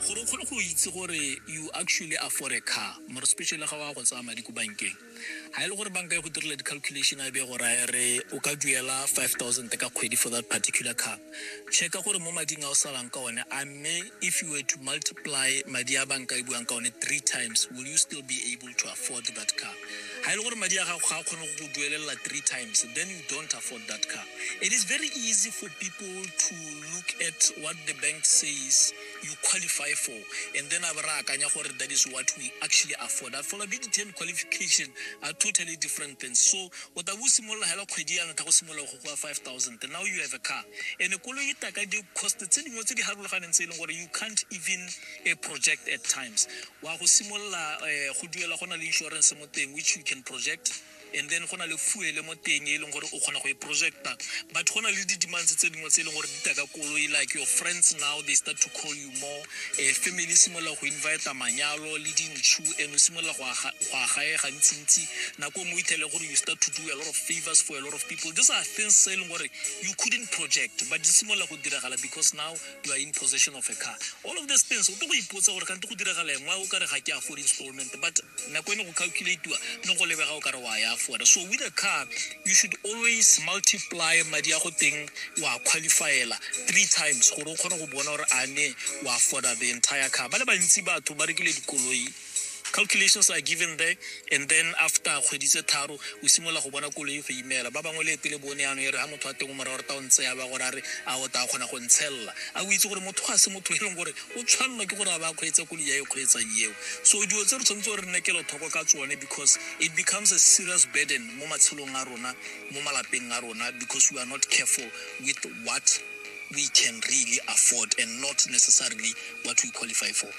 gore o kgone go itse gore you actually afford a car more especially ga wa go tsaya madi ko bankeng ga e le gore banka e go direla di-calculation a be go raya re o ka duela 5000 ka kgwedi for that particular car checka gore mo mading a o salang ka one a mme if you were to multiply madi a banka e buang ka one three times will you still be able to afford that car ga e le gore madi a gago ga a kgone go duelela three times then you don't afford that car it is very easy for people to look at what the bank says you qualify for and then a ba re akanya gore that is what we actually afford affordability and qualification are totally different things so o tabo o simolola hela kgwedi ya ntlha go simolola go kwa 5000 now you have a car and koloi e taka di-cost tse dingwe tse di harologaneng tse e leng gore you can't even uh, project at times wa go simolola eh, go duela go na le insurance mo teng which you can project and then go na le fuele mo teng e leng gore o kgona go e projecta but go na le di-demands tse dingwe tse e leng gore di ta ka koloi like your friends now they start to call you more eh, family e simolola go invita manyalo le dintšhu and o simolola go aga- go agae gantsintsi nako nngwe o ithele gore you start to do a lot of favors for a lot of people these are things tse e leng gore you couldn't project but di simolola go diragala because now you are in possession of a car all of these things o tlo go ipotsa gore kante go diragala engwe o kare ga ke afford installment but nako e ne go calculatiwa ne go lebega o kare wa ya afforda so with a car you should always multiply madi a go teng wa qualifyela three times gore o kgone go bona gore a ne wa afforda the entire car ba le bantsi batho ba rekile dikoloi calculations are given there and then after kgwedi tse tharo o simolola go bona koloi go imela ba bangwe le pele bone yanong e re ga motho wa teng o morago reta o ntse ya ba gore a re a o taa kgona go ntshelela a o itse gore motho ga se motho e leng gore o tshwanelwa ke gore a ba kgweetsa koloi ya e kgweetsang eo so dilo tse re tshwanetse gore re nne kelothoko ka tsone because it becomes a serious burden mo matshelong a rona mo malapeng a rona because we are not careful with what we can really afford and not necessarily what we qualify for